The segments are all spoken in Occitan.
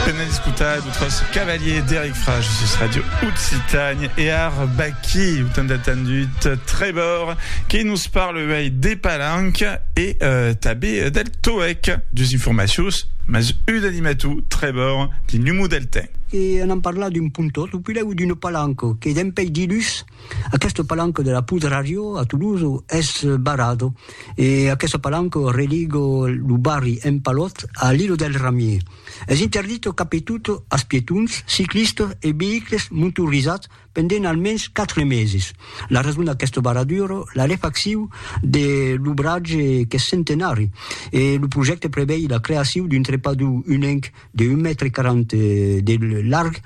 Pena escutar d'autres cavaliers d'Eric Frage sus Radio Occitanie e ar Baki, ou tant attendut Trébor, qui nous parle uèi des palanques et euh, tabé del TOEC, dus informatius, mas un animatou, Trébor, di numou del temps. E anam parlar d'un pontot, ou pilèu d'una palanca, que dempeis dilhus, Aqueste palanco de la Poudre à Rio, a Toulouse, es barrado e aqueste palanco religo lo barri Empalot a l'Ilo del Ramier. Es interdito capetot as pietons, ciclistas e veïcles montorizats pendent almens 4 meses. La rason d'aqueste barraduro, la refaccion de l'obratge qu'es centenari e lo projècte prevei la creacion d'un trepador unenc de un mètre quaranta de larg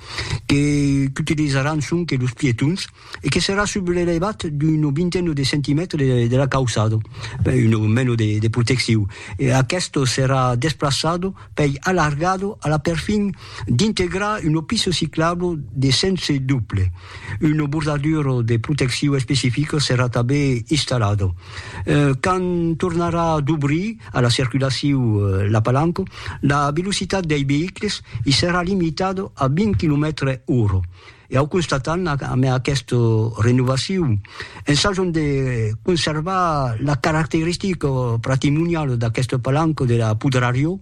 que qu'utilizaràn sonque los pietons e que serà sub l'elevat d'una vintena de centimètres de la cauçada, una mena de de proteccion. E aqueste serà desplaçat pei alargar a la perfin d'integrar una pista ciclabla de sens doble. Una bordadura de proteccion especifica serà tanben installada. Quand tornarà dobrir a la circulaciu la Palanco, la velocitat dei veïcles i serà limitada a 20 quilomètres ora. E au constatam amé aquesta renovaciu, ensajam de conservar la caracteristica patrimoniala d'aquesta Palanco de la Pudrariò,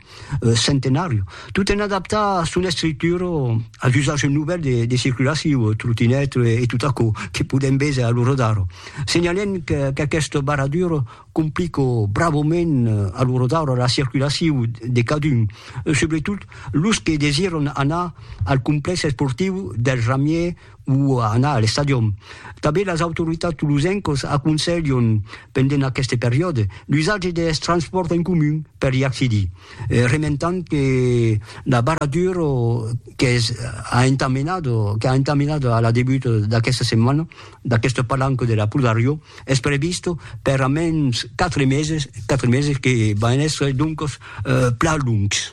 Centenàriu, tot en adaptar son estructura a l'usatge novèl de de circulaciu, trotinèt e tot aquò que podèm véser a lo Rodar. Senhalèm qu'aquesta barradura complica bravament a lo Rodar la circulaciu de cadun, subretot los que desiran anar al complèx esportiu del Ramièr, o a anar a l'estadion. Tanben las autoritats tolosencas aconselhan, pendent aqueste periòde, l'usatge deth transpòrt en comun per i accedir, rementant que la barradura qu'es a entamenada, qu'a entamenada a la debuta d'aquesta setmana, d'aquesta palanca de la Pro Dariò, es prevista per a mens quatre meses, quatre meses que van èsser doncas plan longs.